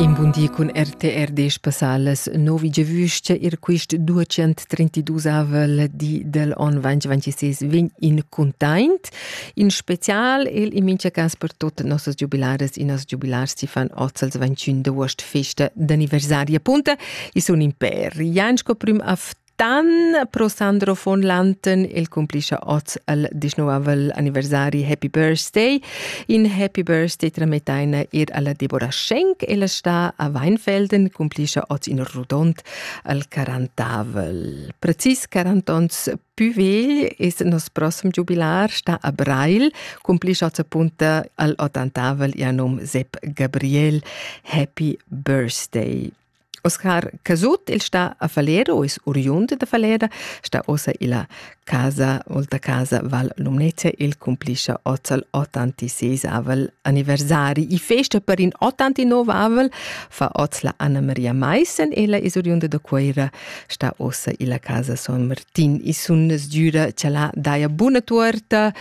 In bun di cun RTR desch passalas novi giavüscha ir quist 232avel di del on 2026 vegn in cuntaint, in special el in mincha cas per tot nossas giubilaras e noss giubilars chi fan hoz als 21 d'aost festa d'anniversari appunta. I sun in pêr. Jan sco prüm afton Dan pro Sandro von Lanten, el cumplischa oz al 19 anniversari Happy Birthday. In Happy Birthday tramettaina ir alla Deborah Schenk, ella sta a Weinfelden, cumplischa oz in rodont al 40. Precis 40 ans Püvegl es nos prossem jubilar sta a Breil, cumplischa sa punta al 80 anum Sepp Gabriel Happy Birthday. Oscar Casut il sta a Falero, is oriund da Falera, sta ossa illa casa, olta casa Val Lumnezia, il cumpliscia ozzal 86 avel anniversari. I festa per in 89 avel fa oz la Anna Maria Maissen, ella is oriunda da Cueira, sta ossa illa casa Son Martin e sun sdüra cha la daja buna tuorta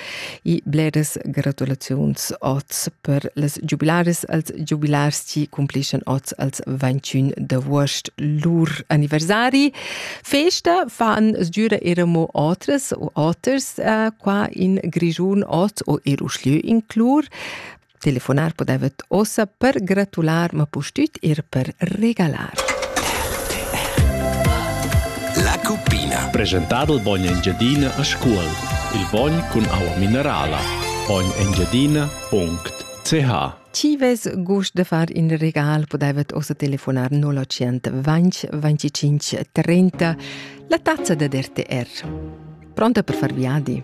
e bleras gratulaziuns oz per las giubilaris als giubilars chi cumplischan oz als 21 d'avuost lur anniversari. Festa fan sdüra era mo otras u oters uh, qua in Grischun oz o er uschlö in Clur. Telefonar podevet ossa per gratular, ma pustüt ir per regalar. La cuppina. Presentado il bogn Engiadina a Scuol. Il bogn cun aua minerala. bognengiadina.ch Ci ves gust de far in regal podevet ossa telefonar 0820 25 30, la tazza de RTR. Pronta per far viadi?